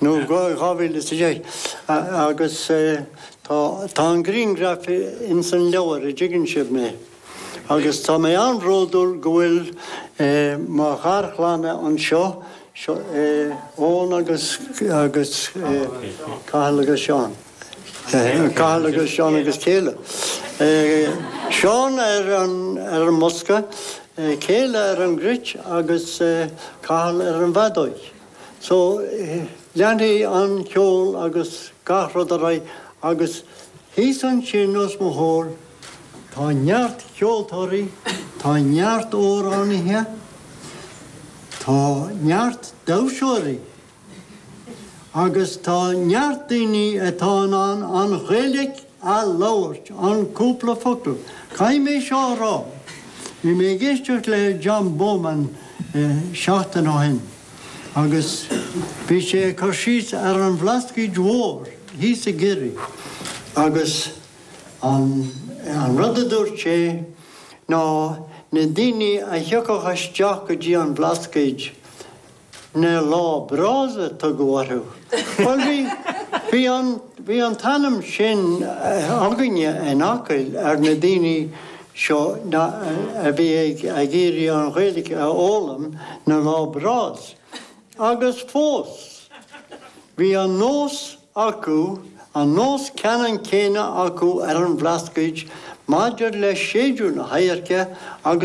nó go 2010 agus tá tá an griangraf in san leabhar a dtuigeann sibh mé agus tá mé an-bhródúil go bhfuil mo gharchlann anseo seo Eoghan agus agus Cathal agus Seán Cathal agus Seán agus Kayla Seán ar an ar an mbosca Kayla ar an gcruit agus Cathal ar an bhfeadóig. So, leanfaidh an ceol agus gach rud ar aghaidh agus thíos ansin os mo chomhair tá neart ceoltóirí, tá neart amhránaithe, tá neart damhsóirí agus tá neart daoine atá in ann an Ghaeilge a labhairt, an cúpla focal. Caithfidh mé seo a rá, bhí mé ag éisteacht le John Bowman seachtain ó shin agus bhí sé ag cur síos ar an Bhlascaod Mhór thíos i gCiarraí agus an rud a dúirt sé ná na daoine a thiocfadh isteach go dtí an Bhlascaod Na lá breás a tugadh orthu. Bhuel bhí bhí an bhí an t-ainm sin againne in Acaill ar na daoine seo na a bhí ag ag iarraidh an Ghaeilge a fhoghlaim, na lá breás. Agus fós bhí an nós acu an nós ceannann céanna acu ar an Bhlascaod maidir le séideadh na hadhairce agus